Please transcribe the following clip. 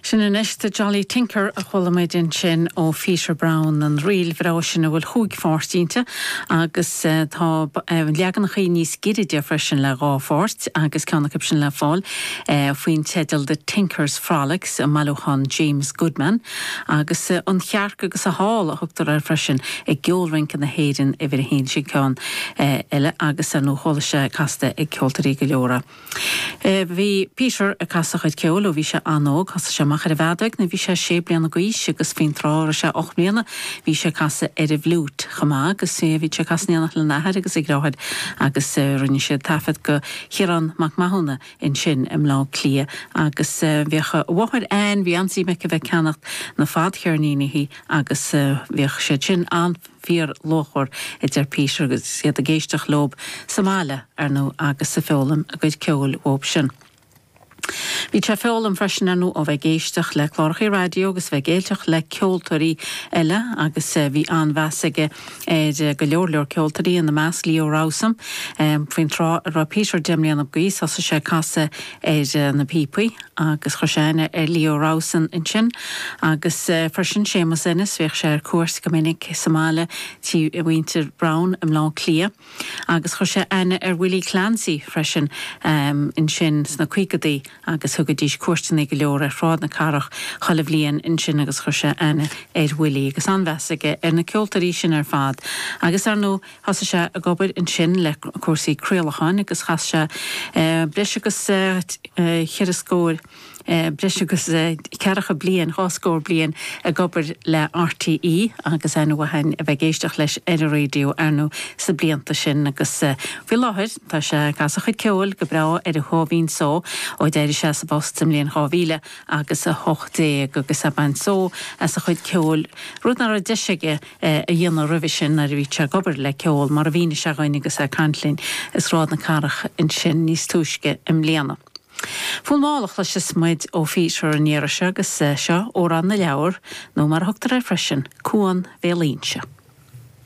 Sin anois The Jolly Tinker a chuala muid ansin ó Pheter Browne, an ríl bhreá sin a bhfuil chúig pháirt inti agus tá leaganachaí níos giorra de freisin le dhá pháirt agus ceann acu sin le fáil faoin teideal The Tinkers Frolics i mbailiúchán James Goodman agus An Chearc agus a hÁl a thugtar air freisin i gCeol Rince na hÉireann uimhir a haon. Sin ceann eile agus ar ndóigh cloistear casta ag ceoltóirí go leor é. Bhí Peter ag casadh a chuid ceoil ó bhí sé an-óg. Thosaigh sé amach ar an bhfeadóig nuair a bhí sé sé bliana dh'aois agus faoin tráth a raibh sé ocht mbliana bhí sé ag casadh ar an bhfliúit chomh maith agus bhí sé ag casadh in éineacht lena athair agus a dhriotháir agus rinne siad taifead do Chiarán Mac Mathúna ansin i mBleá Cliath agus bhíodh a mháthair Anne, bhí an-suim aici a bheith ag ceannacht na fadcheirníní agus bhíodh siad sin an. fíorluachmhar, a deir Peter agus iad ag éisteacht leo, sa mbaile, ar ndú, agus ag foghlaim a gcuid ceoil uathub sin. Bhí sé ag foghlaim freisin, ar ndú, ó bheith ag éisteacht le clárachaí raidió agus a bheith ag éisteacht le ceoltóirí eile agus bhí an-mheas aige ar go leor leor ceoltóirí, ina measc Leo Rowsome. Faoin tráth a raibh Peter deich mbliana d'aois thosaigh sé ag casadh ar na píopaí agus chuir sé aithne ar Leo Rowsome ansin agus freisin Séamus Ennis, bhíodh sé ar cuairt go minic sa mbaile tí mhuintir Browne i mBleá Cliath agus chuir sé aithne ar Willie Clancy freisin ansin sna caogadaí agus thugaidís cuairteanna go leor ar Shráid na Cathrach chuile bhliain ansin agus chuir sé aithne ar Willie agus an-mheas aige ar na ceoltóirí sin ar fad agus ar ndóigh Thosaigh sé ag obair ansin le cúrsaí craolacháin agus chaith sé breis agus cheithre scór, breis agus ceathracha bliain, dhá scór bliain, ag obair le RTÉ agus an-mhaith ann a bheith ag éisteacht leis ar raidió ar ndóigh sna blianta sin agus faoi láthair tá sé ag casadh a chuid ceoil go breá ar a chomhairlín só ó d'éirigh sé as an bpost sa mbliain 2000 agus 18 agus ag baint só as a chuid ceoil, rud nach raibh deis aige. é a dhéanamh roimhe sin nuair a bhí sé ag obair le ceol, mar a mhínigh sé dhuinn agus é ag caint linn i Sráid na Cathrach ansin níos túisce i mbliana. Fonn mall a chloiseas muid ó Pheter an iarraidh seo agus seo Amhrán na Leabhar, nó mar a thugtar air freisin, Cuan Bhéal Inse.